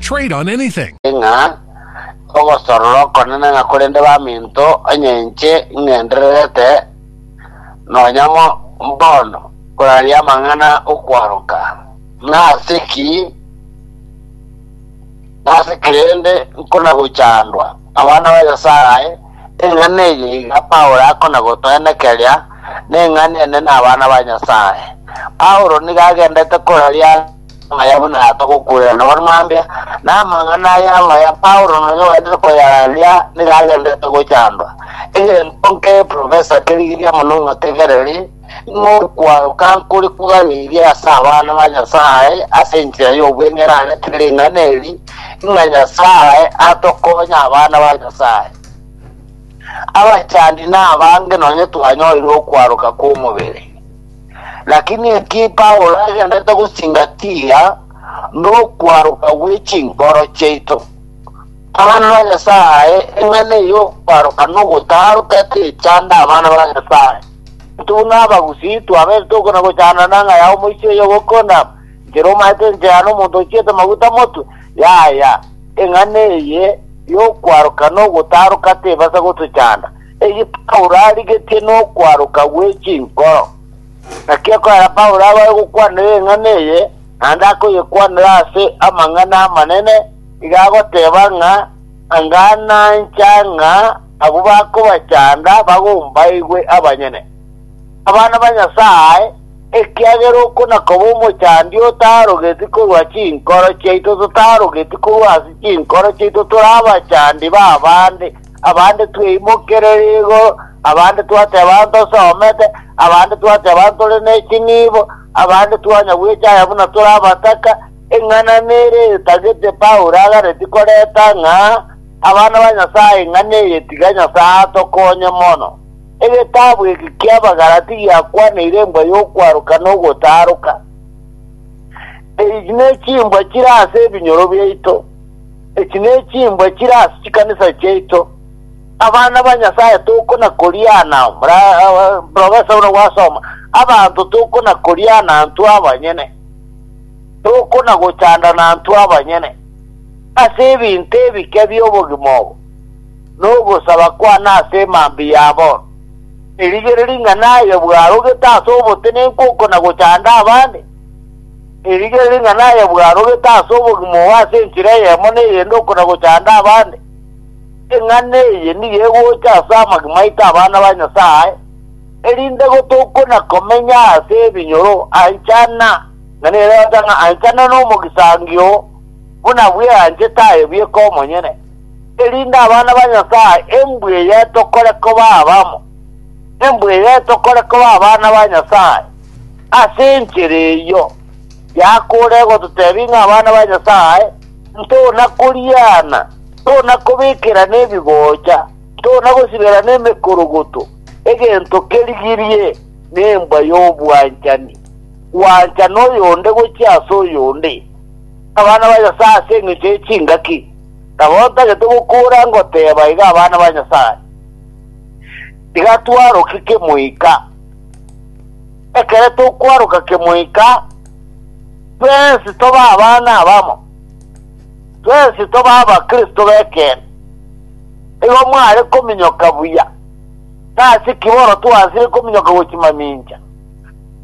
Trade on anything. Ng'a ogosorora okonene ng'a korende baminto, onye inche ing'endererete nonya mo mbono koraria amang'ana okwaroka, nase ki, nase ki rende nkonagochandwa? Abana ba Nyasae, eng'ana eye iga Paulo akonagotoenekeria, neng'ana enene abana ba Nyasae. Paulo nigo agendete koraria. Amaya buna aya togokuuerana nabwo mambia, na amang'ana aya amaya Paulo nonya ogaetete koyarandia nigo agenderete gochandwa. Egento nke Profesa kerigiria mono ngotegereri, ng'a okwaroka nkore kogairie ase abana ba Nyasae ase enchera y'obweng'e eraretire ring'ana eri, ng'a Nyasae atokonya abana ba Nyasae. Abachandi nabange nonya twanyorire okwaroka kw'omobere. Lakini eki Paulo agendete gosingatia nokwaroka gwe chinkoro chiaito. Abana ba Nyasaye, eng'ana eye y'okwaroka nogotaroka techanda abana ba Nyasaye. Buna abagusii twabete tokona gochanda nanga ya omoisia oyo ogokona, Nkere omaete enchera nomonto ochiete maguta motwe. Yaya, eng'ana eye y'okwaroka nogotaroka tebasa gotochanda. Eki Paulo arigetie nokwaroka gwe chinkoro. Naki ekero Paulo abae gokwanera eng'ana eye, naende akoyekwanera ase amang'ana amanene, iga agoteba ng'a, Anga nancha ng'a abwo bakobachanda bagombaigwe abanyene. Abana ba Nyasae, ekiagera oko nakoba omochandi otarogeti korwa chinkoro chiaito totarogeti korwa ase chinkoro chiaito tore abachandi b'abande, Abande tweimokerere igoro, abande twateba ntosomete, abande twateba ntore ne chinibo, abande twanya gwecha aya buna tore abataka. Eng'ana nere etagete Paulo aganetie korenta ng'a, Abana ba Nyasae, eng'ana eye tiga Nyasae atokonye mono. Egetabu eke ki'Abagalati giakwaneire embwa y'okwaroka na ogotaroka. Echi nechimbwa chire ase ebinyoro biaito. Echi nechimbwa chire ase chikanisa chiaito, abana ba Nyasaye tokona koriana mora professor buna gwasoma, abanto tokona koriana intwe abanyene, tokona gochandana intwe abanyene ase ebinto ebike bi'obogima obo, na ogosaba kwane ase emambia ya bono, erigere ring'ana aye bwarogete ase obotenenku okona gochanda abande. Erigie ring'ana aye bwarogete ase obogima obo ase enchera eyemo neyende okona gochanda abande, eng'ana eye nigo egocha ase amagima aito abana ba Nyasae, erinde gotokona komenya ase ebinyoro anchana na nerioda ng'a anchana nomogisangio buna bweanchete aye bweka omonyene, erinde abana ba Nyasae embweyetokore koba abamo, embweyetokore koba abana ba Nyasae. Ase enchera eyio yakore gototebia ng'a abana ba Nyasae ntona koriana, ntona kobekerana ebigocha, ntona gosiberana emekorogoto, egento kerigirie nembwa y'obwanchani, gwanchana oyonde gochia ase oyonde. Abana ba Nyasae ase engecho ye chingaki, nabo ntagete gokora ngoteba iga abana ba Nyasae, tiga twaroke kemoika. Ekero tokwaroka kemoika, twensi tobe abana abamo, twensi tobe Abakristo b'ekeene. Igo mware kominyoka buya. Nase ki bono twansire kominyoka gwe chimamincha?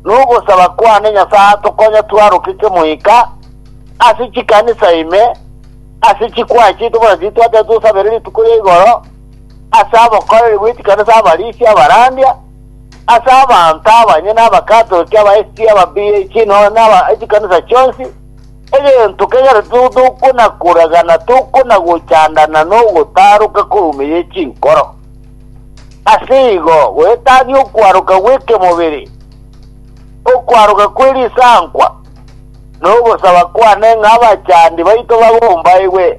Nogosaba kwane Nyasae atokonye twaroke kemoika ase chikanisa ime, ase chikwaya chiaito buna titwateba tosabere rituko ria igoro, ase abokoreri bwe chikanisa abarisia abarandia, ase abanto abanyene Abakatoliki, aba SG, aba BAG, nonya naba echikanisa chionsi, egento kegere tigo tokona koragana tokona gochandana nogotaroka korumeyie chinkoro. Ase igo goetania okwaroka gw'ekemobere, okwaroka kwe risankwa, nogosaba kwane ng'a abachandi baito bagombaigwe,